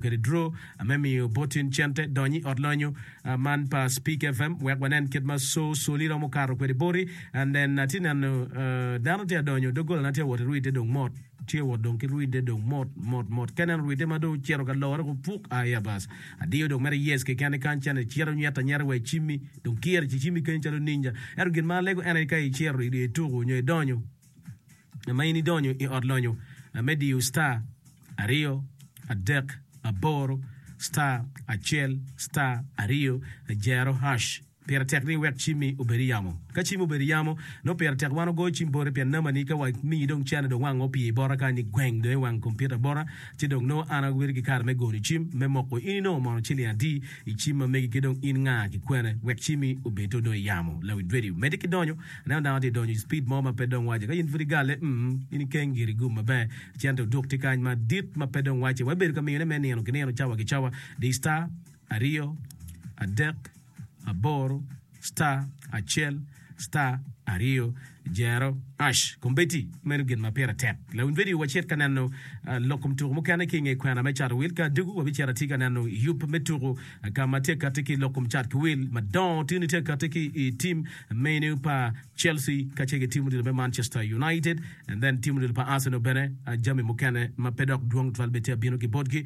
Kede dro me miyo botin cente dony i ot lonyo man pa Speak FM wek wanen kit ma co coli romo kato kwede boti. Nen, atye neno dano tye ka donyo, doggolane tye ka wot ki rwide dong mot, tye ka wot dong ki rwide dong mot mot mot. Ka ineno rwide ma dong ocito ka lore woko puk, aya bas, adiyo dong mere yes keken ni kany cente cito nyeta nyeta wa i cimmi, dong kiro ci cimmi kany calo ninja. Ento gin ma alego en aye ka icito ituko nyo idonyo. ma in idonyo i ot lonyo me diyo star aryo adek aboro star acel star aryo jero hash. Pire tek ni iwek cimmi obed i yamo. Ka cimmi obedo i yamo, nongo pire tek wan ogoyo cim boti pien namani ka wamiyi dong cene dong wanga opye i bota kany ni gweng dong i wang kompiuta bota ci dong nongo an abedo ki kare me goyo cim me moko in inongo mono ciling adi I cim ma megi ki dong in nga ki kwene wek cimi obed to dong iyamo lawi dwedi omedde ki donyo aneno dano tye donyo i speed mo ma pe dong wace ka in pud igale mm in ikeng giri igum maber cente oduk tye kany ma dit ma pe dong wace wa ibedo ka miyone me nino ki nino cawa ki cawa di star aryo adek aboro star acel star aryo jero ash kombeddi meno gin ma pire tek lawiny vedio wa cit ka neno lok kom tuko mukene ki nge kwena me cat wil ka dugu wa bicito atir ka neno yub me tuku ka ma tye kati ki lok kom cat ki wil madongo tini tye kati ki i tim menu pa Chelsea ka ce ki tim odilo me Manchester United and then tim odilo pa Arsenal bene jami mukene ma pe dok dwong twal bene tye abino ki botgi